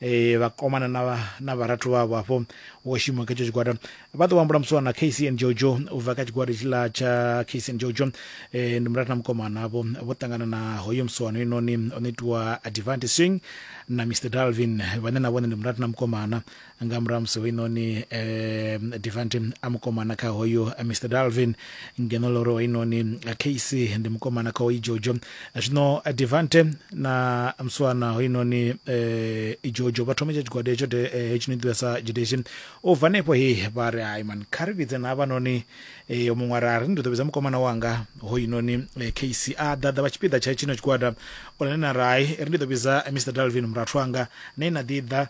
e, vhakomana na, vha- na vharathu vhavho hafho wo shuma kha etsho tshigwada vha ḓo vhambula musi wana kc and jojo u bva kha tshigwada tshiḽa tsha kc and jojo e, ndi murathu na mukomana havho vho ṱangana na hoyo musiwano inoni o no itiwa advanti swing na mr dalvin vhane na vhone ndi murathu na mukomana nga murahu ha musi hoinoni um divanti a mukomana kha hoyo eh, mr dalvin ngeno loro hoinoni eh, kc ndi mukomana kha hoyi jojo zwino devante na muswana hoyunoni um jojo vha thome tsha tshigwada hetsho de- eh, hetshi no ḓivha sa judation u bva hanefho he vha ri hai mani kha ri vhidze na havhanoni um muṅwe ara ri ndi ḓo vhidza mukomana wanga hoyunoni eh, kc a ḓaḓa vha tshipiḓa tsha tshino tshigwada onani na rai ri ndi ḓo vhidza mr dalvin murathu anga ne na ḓi ḓa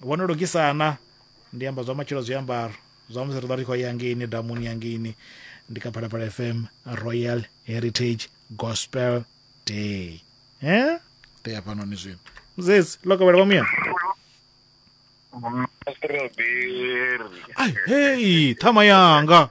Vho no lugisa na? Ndi amba zwa matshilo zwiambaro zwa musi ri ḓo ri khou ya ngeini damuni ya ngeini ndi kha phalaphala fm royal heritage gospel day he ḓe ya fhanoni zwino muzedzi lokovhela vha muyana Strawberry. ai hei ṱhama yanga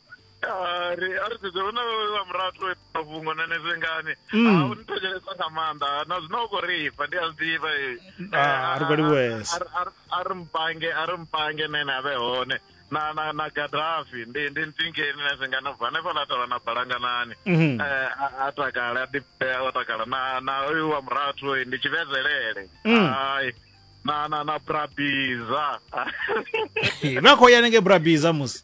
Ah, ri a ri sedze hu na vha murato mafhungo na nezwe ngani Mm. Ah, u ni thetshelesa nga maanḓa Ah, na zwino u khou ri ifha ndi a zwi ḓivha eh. Ah, a ri khou livhuwesa. Ah, ah, ah, a ri mpange a ri mpange nene a vhe hone na na na gadafi ndi ndi ntingeni na zwingani ubva hanefha la tavha na balanganani Mhm. Eh, a- a takale a ḓipea o takala na na uyu wa murathu eh, ndi tshivhezelele Mm. ai na na na brabiza vha khou ya nenge brabiza musi